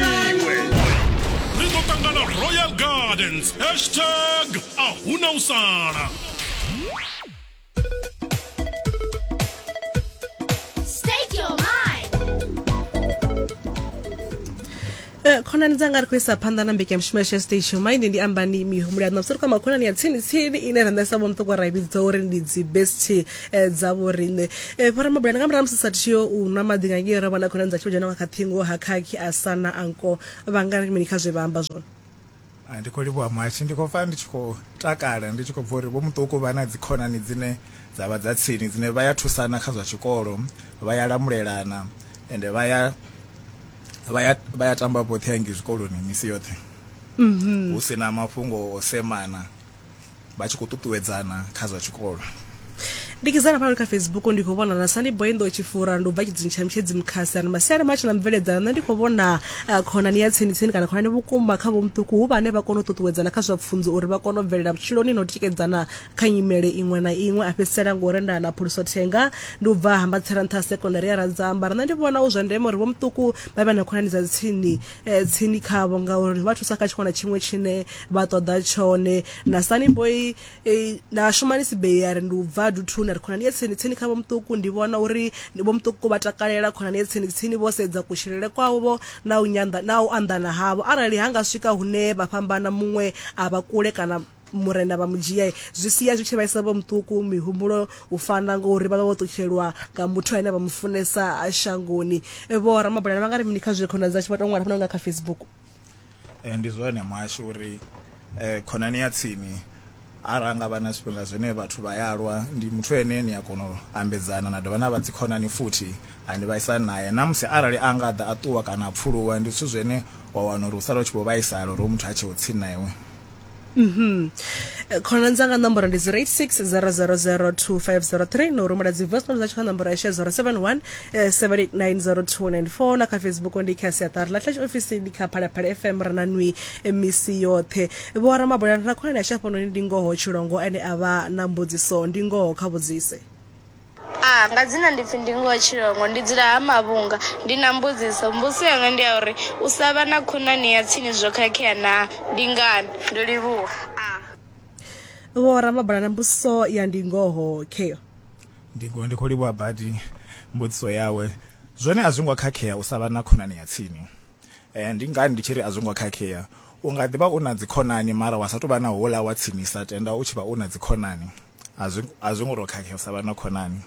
iwe ri ḓo ṱangana royal gardens hashtag a huna u sala Eh, khonani dzanga ri khou isa phanḓa na mbekanyamushumo ya shestation maine ndi ambani mihumbulo yaṋu mabusari kwa makhonani ya tsini tsini ine ra ṋesa vho muṱoko ra i vhidza uri ndi dzi best eh, dza vhoriṋe eh, fara mabulana nga murahu musi sa thiyo u nwa maḓi nga ngei ra vhona khonani dza tshivhadzhana wa kha ṱhingo ha khakhi a sana anko vhanga mini kha zwe vha amba zwone ah, ndi khou livhuwa muhashi ndi khou pfa ndi tshi khou takala ndi tshi khou bva uri vho muṱuku vha na dzikhonani dzine dza vha dza tsini dzine vha ya thusana kha zwa tshikolo vha ya lamulelana ende vha ya vha ya vha ya tamba vhoṱhe hangi zwikoloni misi yoṱhe mm-hmm. hu si na mafhungo o semana vha tshi khou ṱuṱuwedzana kha zwa tshikolo ndi kizana pano kha facebook ndi khou vhona na sani boy ndo tshifura ndo bva tshidzini tsha mutshedzi mukhasi ano masiari matshi na mveledzana nṋe ndi khou vhona ah, khonani ya tsini tsini kana khonani vhukuma kha vhomuṱuku hu vhane vha kona u ṱuṱuwedzana kha zwa pfunzo uri vha kone u bvelela vhutshiloni na u tikedzana kha nyimele iṅwe na iṅwe a fhedzisela ngo renda na phuluso thenga ndi u bva hambatsela nṱha ha sekondari ya radzamba nṋe ndi vhona hu zwa ndeme uri vhomuṱuku vha vhe na khonani dza tsini eh, tsini khavho ngauri vha thusa kha tshiṅwe na tshiṅwe tshine vha ṱoḓa tshone na sani boy eh, na shumani sibei ya ri ndi u bva duthuni ri khonani ye tsini tsini khavho muṱuku ndi vhona uri vho muṱuku vha takalela khonani ye tsini tsini vho sedza kutshilele kwavho na u nyanḓa na u anḓana havho arali ha nga swika hune vha fhambana muṅwe a vha kule kana murena vha mu dzhia zwi sia zwi tshi vhaisa vho muṱuku mihumbulo u fana ngori vha vha vho ṱutshelwa nga muthu ane vha mu funesa shangoni vho ramabulana vha nga ri mini kha zwe khonani dzashu vha tou ṅwala fana nga kha facebook eh, ndi zwone mwashu uri eh, khonani ya tsini arali nga vha na zwifhinga zwine vhathu vha ya lwa ndi muthu ene ni a kona u ambedzana na dovha na vha dzikhonani futhi ani vhaisani naye na musi arali a nga ḓa a ṱuwa kana a pfuluwa ndi zwithu zwine wa wana uri u sala u tshi vho vhaisala uri muthu a tsheho tsini na iwe Mhm. Eh, khonani dzanga nomboro ndi 086 000 2503 no rumela dzi voice note dza tshikha nomboro ya 071 eh, 7890294 na kha facebook ndi kha siaṱari ḽa tlash ofisi ndi kha phalaphala fm ra na nwi eh, misi yoṱhe vho ramabola na khonani ya shafhanoni ndi ngoho tshilongo ene a vha na mbudziso ndi ngoho kha vhudzise A, Nga dzina ndi pfi Ndingo wa Tshilongo, ndi dzula ha Mavhunga. Ndi na mbudziso. Mbudziso yanga ndi ya uri u sa vha na khonani ya tsini zwo khakhea naa? Ndi ngani? Ndo livhuwa. A. Vho Ramabulana, Mbudziso ya Ndingoho kheyo. Ndingo, Ndi khou livhuwa badi mbudziso yawe. Zwone a zwi ngo khakhea u sa vha na khonani ya tsini. Ndi ngani ndi tshi ri a zwi ngo khakhea? U nga ḓi vha u na dzikhonani mara wa sa tou vha na houḽa wa tsinisa, tenda u tshi vha u na dzikhonani. A zwi a zwi ngo to khakhesa vha na khonani.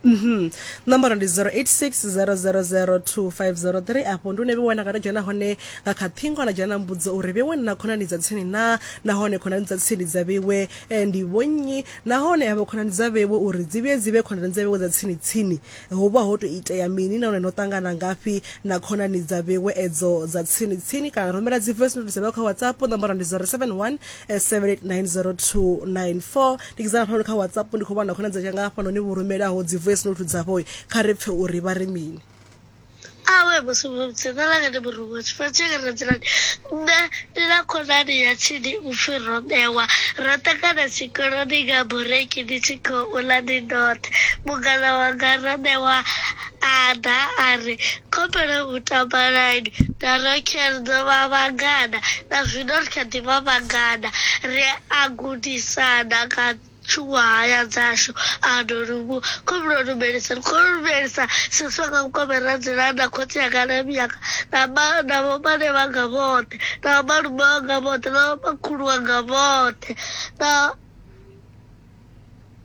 Mhm. Nomboro ndi 0860002503 afho ndi une vhe wana kana dzhena hone nga kha thingo na dzhena mbudzo uri vhe wana khonani dza tsini na nahone khonani dza tsini dza vhewe eh, ndi vhonnyi nahone avho khonani dza vhewe uri dzi vhe dzi vhe khonani dza vhewe dza tsini tsini Ho vha ho tou itea mini nahone no ṱangana ngafhi na khonani dza vhewe edzo dza tsini tsini? Kana rumela dzi voice note dza vhewe kha WhatsApp, nomboro ndi 0717890294. Ndi kidzana hafhanoni kha WhatsApp ndi khou vhona khonani dza tshanga hafhanoni vho rumelaho dzi voice note dzavho, kha ri pfhe uri vha ri mini. Awe musumudzi nṋe langa ndi murungo tshifhinga tshi nga ra dzulani nṋe ndi na khonani ya tshini u pfhi robewa ro ṱangana tshikoloni nga bureki ndi tshi khou ḽa ndi ndoṱhe mungana wanga robewa a ḓa a ri khopelo u tamba line na rokel dzo vha vhangana na zwino ri kha ḓi vha vhangana ri a gudisana kha Tshuṅwahaya dzashu a no lumu khomno lumelisa khou lumelisa siswa nga vhukome ra dzula na khotsi yanga na miyanga na ma na vhomane vhanga vhoṱhe na vhomalume wanga vhoṱhe na vhomakhulu wanga vhoṱhe na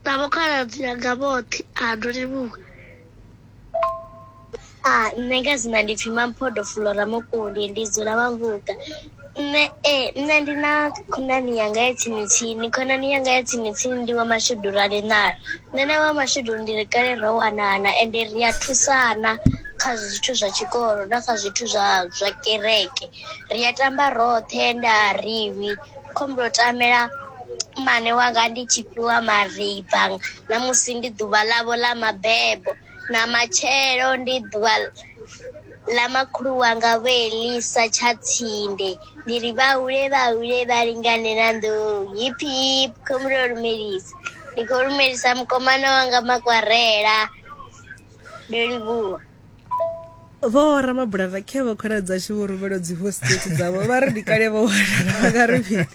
na vhokhaladzi yanga vhoṱhe a no limuka Ah, nṋe nga dzina ndi pfi mamphodo fulora mukuli ndi dzula vhavhuga nṋe ee nṋe ndi na khonani yanga ya tsini tsini khonani yanga ya tsini tsini ndi wa mashudu ra linala nṋe na wa mashudu ndi ri kale ro wanana ende ri a thusana kha zwithu zwa tshikolo na kha zwithu zwa zwa kereke ri a tamba roṱhe ende a ri lwi khombo yo tamela mmane wanga ndi tshi fhiwa mariba na musi ndi ḓuvha ḽavho ḽa mabebo na matshelo ndi ḓuvha ḽa makhulu wanga vho elisa tsha tsinde ndi ri vha hule vha hule vha lingane na nḓou hip hip khombo yo lumelisa ndi khou lumelisa mukomana wanga makwarela ndo livhuwa vho ramabulana khe vho khona dzashu vho rumela dzi voice note dzavho vha ri ndi kale vho wanala vha nga ri mini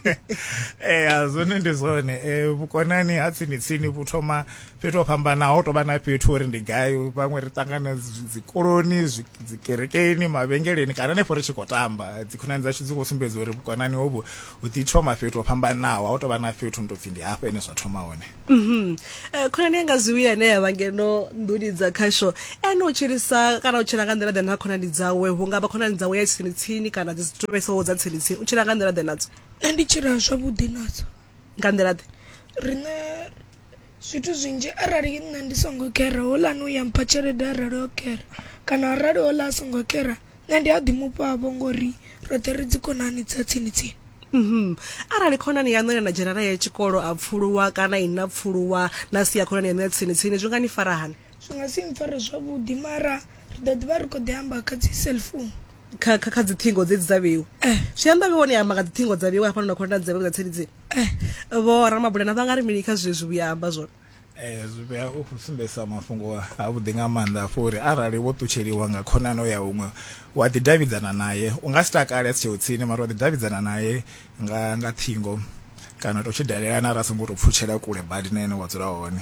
ee eh, zwone ndi zwone um vhukonani ha tsini tsini vhu thoma fhethu ho fhambanaho ho tovha na fhethu uri ndi gai vhaṅwe ri ṱangana dzikoloni dzikerekeni mavhengeleni kana nefho ri tshi khou tamba dzikhonani dzashu dzi khou sumbedza uri vhukonani hovhu hu ḓi thoma fhethu ho fhambanaho ha u tovha na fhethu ndo pfhi ndi hafha ene zwa thoma hone Mhm. Eh, khonani yanga zwiwi ane ya vha ngeno nḓuni dza khasho ene u tshilisa kana u tshila nga nḓila ḓe na khonani dzawe hu nga vha khonani dzawe ya tsini tsini kana dzi si to vhesaho dza tsini tsini u tshila nga nḓila ḓe nadzo nṋe ndi tshila zwavhuḓi nadzo nga nḓila ḓe riṋe zwithu zwinzhi arali nṋe ndi songo kera houḽani u ya mpha tshelede arali o kera kana arali houḽa a songo kera nṋe ndi a ḓi mufhavho ngori roṱhe ri dzi khonani dza tsini tsini Mm-hmm. arali khonani yaṋu ine na dzhena naye tshikolo a pfuluwa kana i na pfuluwa na sia khonani yaṋu ya tsini tsini zwi nga ni fara hani zwi nga si mpfare zwavhuḓi mara ri ḓo ḓivha ri khou ḓi amba kha dzi cellphone kha kha kha dziṱhingo dzedzi dza vheiwa Eh. zwi amba vheiwa ni amba nga dziṱhingo dza vheiwa hafhanoni na khonani dza vheiwa dza tsini tsini eh vho ramabulana vha nga ri mini kha zwezwi vhuya amba zwone Ee, zwi vhea u khou sumbedzisa mafhungo avhuḓi nga maanḓa afho uri arali wo ṱutsheliwa nga khonani o ya huṅwe wa ḓidavhidzana naye u nga si takale a si tsheo tsini mara wa ḓidavhidzana naye nga nga ṱhingo kana to tshi dalelana ra songo to pfutshela kule badi na ene wa dzula hone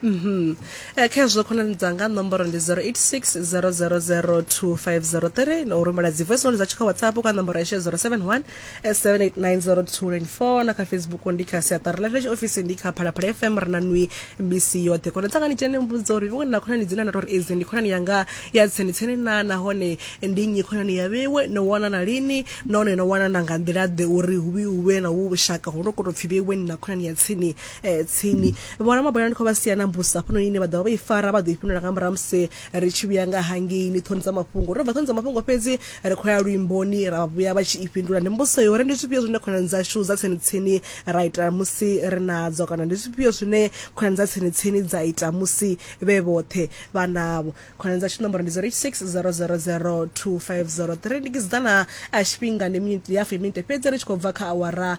Mhm. Eh, kha hezwo khonani dzanga nomboro ndi 086 000 2503 na u rumela dzi voice note dza tshi kha whatsapp kha nomboro ya 07 1 7890294 na kha facebook ndi kha siaṱari ḽa fheshe ofisi ndi kha phalaphala fm ri na nwi mbc yoṱhe kona tsangani tshene mbudzo uri vhone na khonani dzine na tori edzi ndi khonani yanga ya tseni tseni na nahone ndi nnyi khonani ya vhewe no wanana lini nahone no wanana nga nḓila ḓe uri hu vhe hu vhe na vhu vhushaka ho no koto pfhi vhewe ni na khonani ya tsini eh, tsini vhona mabona ndi khou vha sia na mbusa hafhanoni ine vha ḓovha vha i fara vha ḓo i fhindula nga murahu musi ri tshi vhuya nga hangeini ṱhoni dza mafhungo ro bva ṱhoni dza mafhungo fhedzi ri khou ya luimboni ra vhuya vha tshi i fhindula ndi mbudziso yo uri ndi zwifhio zwine khonani dzashu dza tsini tsini ra ita musi ri nadzo kana ndi zwifhio zwine khonani dza tsini tsini dza ita musi vhe vhoṱhe vha navho khonani dzashu nomboro ndi 0860002503 ndi kiziḓana a tshifhinga ndi miniti ya fumi minite fhedzi ri tshi khou bva kha awara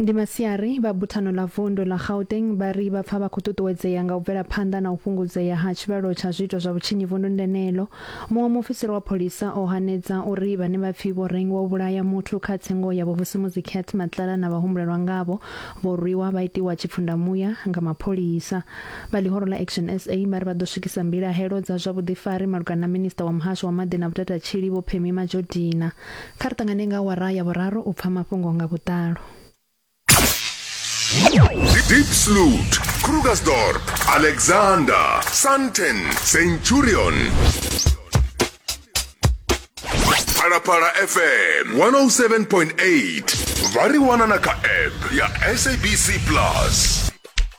Ndi masiari, vha Buthano ḽa Vundu ḽa Gauteng vha ri vha pfa vha khou ṱuṱuwedzea nga u bvela phanḓa na u fhungudzea ha tshivhalo tsha zwiito zwa vhutshinyi vunduni ḽeneḽo. Muṅwe muofisiri wa pholisa o hanedza uri vhane vha pfi vho rengiwa u vhulaya muthu kha tsengo ya Vhovusimuzi Cath Matlala na vhahumbulelwa ngavho vho rwiwa vha itiwa tshipfundamuya nga mapholisa. Vha ḽihoro ḽa Action sa vha ri vha ḓo swikisa mbilahelo dza zwa vhuḓifari malugana na Minisiṱa wa Muhasho wa Maḓi na Vhutatatshili Vho Phemie Majodina Kha ri ṱangane nga awara ya vhuraru u pfa mafhungo nga vhuḓalo. Diepsloot, Krugersdorp, Alexander, Sandton, Centurion. Phalaphala FM 107.8 vha ri wana na kha app ya SABC Plus.